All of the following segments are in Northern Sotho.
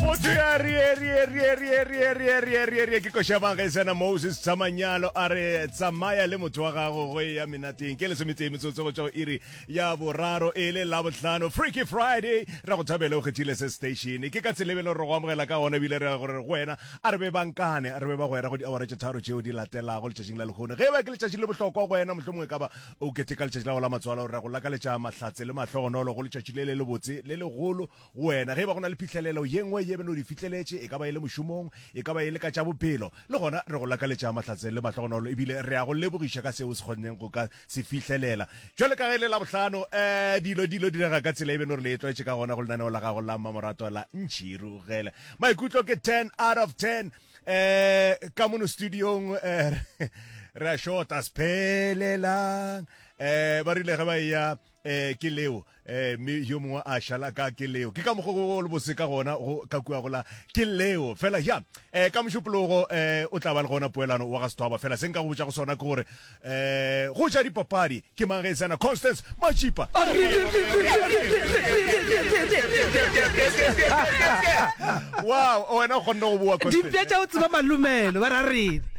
motho ya rierierierierierierierie ke košabanga e sena moses tsamanyalo a re tsamaya le motho wa gago go e ya menateng ke lesometee metsotso go tšwa iri ya boraro e le labotlhano freaky friday ra go thabele o kgethile se station ke ka tshelebele gore go amogela ka gona ebile re gore go wena a re be bankane re be ba gwera go diawara tše tharo tšeo di latelago letšatšing la lekgone ge e ba ke letšatši le bohlokwa go wena mohlomongwe e ka ba o keteka letšatši la go la matswalo ra go lakaletša mahlatse le mahlogonolo go letšatši le le lebotse le legolo Go wena, ge e ba go na le phihlelelo ye nngwe ye bjalo o di fihleletše, e ka ba e le mošomong, e ka ba e le ka tša bophelo, le gona re go lakaletša mahlatse le mahlogonolo ebile re a go lebogiša ka seo o se kgonneng go ka se fihlelela. Bjalo ka ge e le Labohlano, ee, dilo di ilo direga ka tsela ye bjalo re le tlwaetše ka gona go lenaneo la gago la mmamoratwa la Ntšhirugele. Maikutlo ke ten out of ten. Ee, ka mono studiong ee, re a shota, se phelelang. Ee, ba rile ge ba eya eh ke leo eh me yo mongwe a shala ka ke leo ke ka mogo go le bose ka gona go ka kua gola ke leo fela ya eh ka mošupologo eh o tla ba le gona poelano wa ga sethwaba fela se nka go botša go sona ke gore eh go ja dipapadi ke mang ge e tsena constance machipa wow wena o kgonne go boa dipja tša o tseba malumelo ba ra rene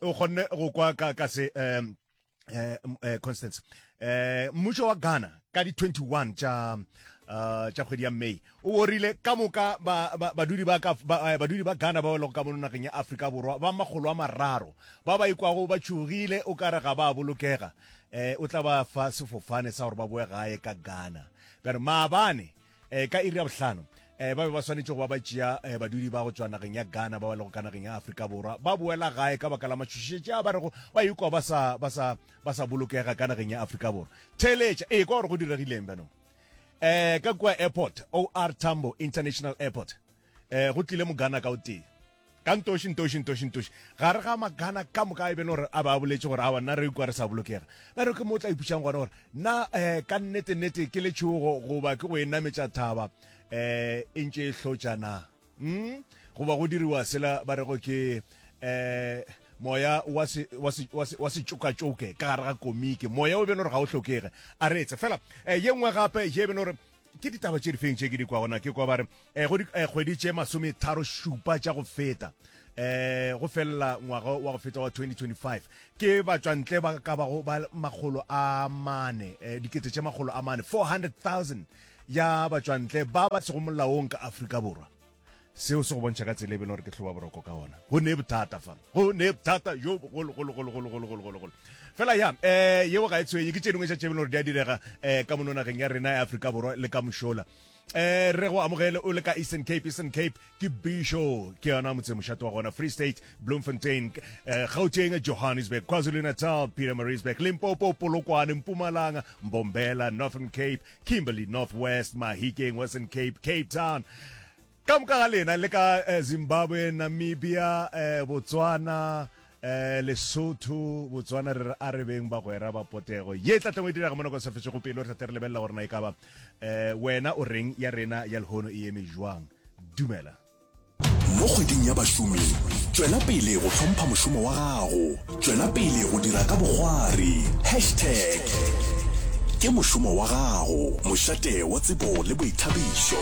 o kgonne go kwa ka ka se um eh, eh, constance eh, mmušo wa ghana ka di-21 tša uh, tša kgwedi ya may o orile ka moka badudi ba, ba, ba, eh, badudi ba ghana ba lego ka mono nageng ya afrika borwa ba makgolo a mararo ba ba ikwago ba tšhogile o kare ga ba bolokega eh, o tla ba fa sefofane sa gore ba boe gae ka ghana bjare maabane Eh, ka iri ya bohlano eh, ba be ba swanetše go ba ba tšea eh, badudi ba go tšwa nageng ya ghana ba ba lego ka nageng ya aforika borwa ba boela gae ka baka la matšhošišetše a ba rego ba ikwa ba sa, ba sa, ba sa bolokega ka nageng ya aforika borwa theeletša ee kwa gore go diregileng bjanong um ka kua airport or tambo international airport eh go tlile mogana ka o tee ka ntoši ntoši ntoši ntoši gare ga magana ka moka e bene gore a ba boletse gore awa nna re ikwa re sa bolokega ba re ke mo tla ipušang gona gore na um ka nnete nnete ke letšhogo goba ke go enametša thaba um e ntše e hlotša na m hmm? goba go diriwa sela ba rego ke um moya wa setšokatšoke ka gare ga komiki moya o bene gore ga o hlokege a reetse fela um ye nngwe gape ye bene gore ke ditaba tše difeng tše ke di kwa gona ke kwa ba re eh, go dikgwedi eh, tše masometharo šupa tša go feta eh go fella ngwaga wa go feta wa 2025 ke batswantle ba ka bago ba makgolo a mane eh, dikete tše makgolo a mane 400000 ya batswantle ba ba sego molaong ka afrika borwa seo se go bontšha ka tsela e bele gore ke hloba boroko ka ona go ne bothata fa go ne bothata jo bogologologologologologologolo fela ya um yeo ga e tshwenye ke tše dingwe tša tše bele gore di a direga um ka mono nageng ya rena ya aforika borwa le ka mošola eh re go amogele o le ka eastern cape eastern cape ke bisho ke yona motse mošato wa gona free state bloemfontein eh, gauteng johannesburg kwazulu-natal peter marisburg limpopo polokwane mpumalanga mbombela northern cape Kimberley, North West, Mahikeng, Western Cape, Cape Town. Ka moka ga lena le ka eh, Zimbabwe, Namibia, eh, Botswana, eh, Lesotho, Botswana re re a re beng bagwera ba potego. Ye tla tleng o e dirago monako sa fetšego pele o tlhate re lebelela gore na e ka ba eh, wena o reng ya rena ya lehono e eme jwang. Dumela. Mo kgweding ya bašomi, tšwela pele go hlompha mošomo wa gago. Tšwela pele go dira ka bogwari. Hashtag ke mošomo wa gago, mošate wa tsebo le boithabišo.